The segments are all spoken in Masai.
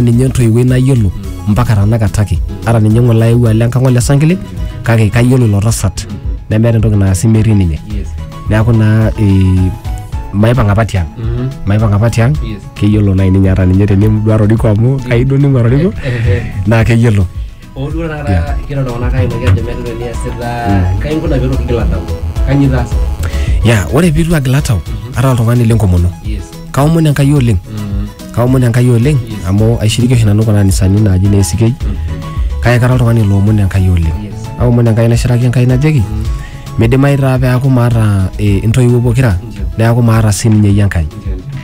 ninye entoiwuoi nayiolo mpaka tanakata ake ata ninye ng'ole aewuo alo enkang ole sankile kake kayiolo ilo tasat nemeeta entoki naasi metii ninye Yes. neeku naa eh, maipang apa tiang Mhm. maipang apa tiang Yes. keyiolo nai ninye ata ninye teniduaa roriko amu kaido ning'ua roriko Eh, eh. naa keyiolo Hoo duo taata Yeah. kira iltung'anak aimaki ajo meeta entoki niasita, kai inkuna piitu kigil atau? Kanyoo itaasa? ya ore piitu agil atau ara oltung'ani lenkomono Yes. kaomon enkai oleng Mm. kaomon enkai oleng Yes. amu aishiriki oshi nanu kuna anisani naaji ne ACK kake kara oltung'ani loomon enkai oleng Yes. aomon enkai naishiraki enkai najoki midimayu taa peaku maata eh, intoiwuo pokira Ndio. neaku maata sii ninye iyie enkai Ndio, ndio.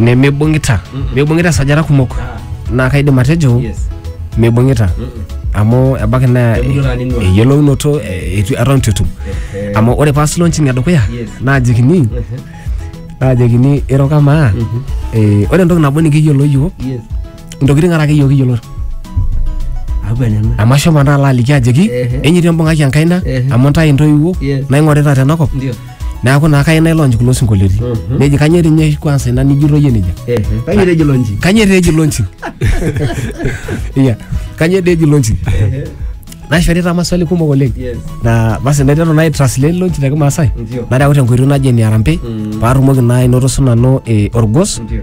nemeibung'ita meibung'ita esajata kumok naa kaidim atejo meibung'ita amu ebaiki naa Emuto taa ning'ua. eyiolounoto eh, etu- eton itu etum amu ore paas launching edukuya Yes. naajikini naajikini iro kamaa eh, ore entoki nabo nikiyiolo yiok Yes. intokitin are ake yiok kiyiolo Abu enena. amu ashomo naa alo aliki ajoki Ehe. enyitu embung'aki enkaina Ehe. amu ntae intoiwuo Yes. naing'orita tenakop Ndio. neaku naa kayieu nailonch kulo sinkolioitin neji kanyoo etii ninye kwansa ina nijito iyie nejia Kayieu etejo lonji. kanyoo etejo launching iya kanyoo etejo launching naishorita maswali kumok oleng Yes. na basi naiteru nai translate launch te kimaasai Ndio. nareu tenkoitoi naji ene arambe paatumoki naa ainoto sinanu eh, orgos Ndio.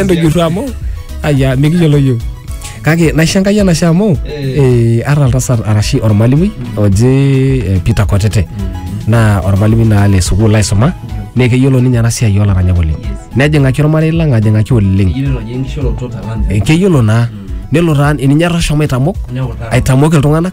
entujurru amu aya mikiyiolo yiok kake naishangai enashe amu eh, ara oltasat arashi ormalimui oji eh, Peter Kotete naa ormalimui naa le sukuul aisuma naa keyiolo ninye ena siai olaranyak oleng nejing'aki ormarei lang ajing'aki oleng Eh, keyiolo naa nelo taa ninye etashomo aitamok aitamok iltung'anak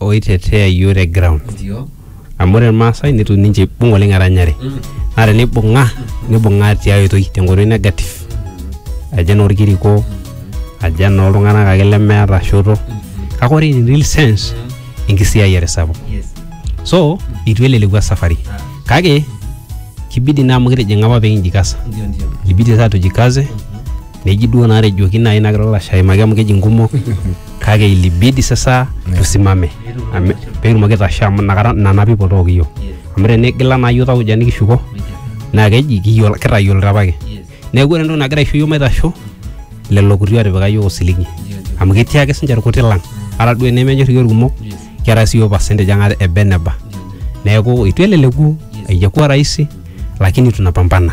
oitetea iyiook te ground amu ore irmaasai netu ninche ibung oleng eranyare naa tenibung'a nibung'a tiai oitoi tenkoitoi negative ajo enorkiriko ajo enooltung'anak ake lemeeta shoto kake ore in real sense enkisiayiare sapuk so itu eleleku esafari kake kibidi naa amu kitijing'a apa pee kinjikasa ibidi sasa tujikaze neji duo natejoki nai nagira olashe aimaki amu keji nkumok kake ilibidi sasa tusimame Ame- petumoki aitasho amu nakata nana people took iyiok amu tenigila naa iyiok tauja nikishuko naa keji kiyiolo kitayiolito apake neeku ore entoki nagira aisho iyiok maitasho lelo kuti otipika iyiok osiligi amu ketii ake sinche irkuti lang ata duo enemenyor iyiok irkumok keeta si iyiok percentage ang ata eba eneba neeku itu eleleku aijakuwa rahisi lakini tunapambana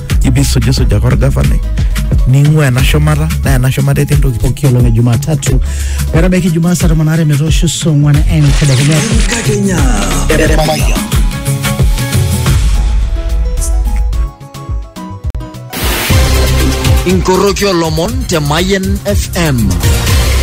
ibisujisujaka orgavanai ning'ua ena shumata naa ena shumata etii entoki pooki olong e Jumatatu metabaiki Jumaa saa tomon aare metoosho saa ong'wan entedekenya. Enkakenya. Inkoroki olomon te Mayen FM.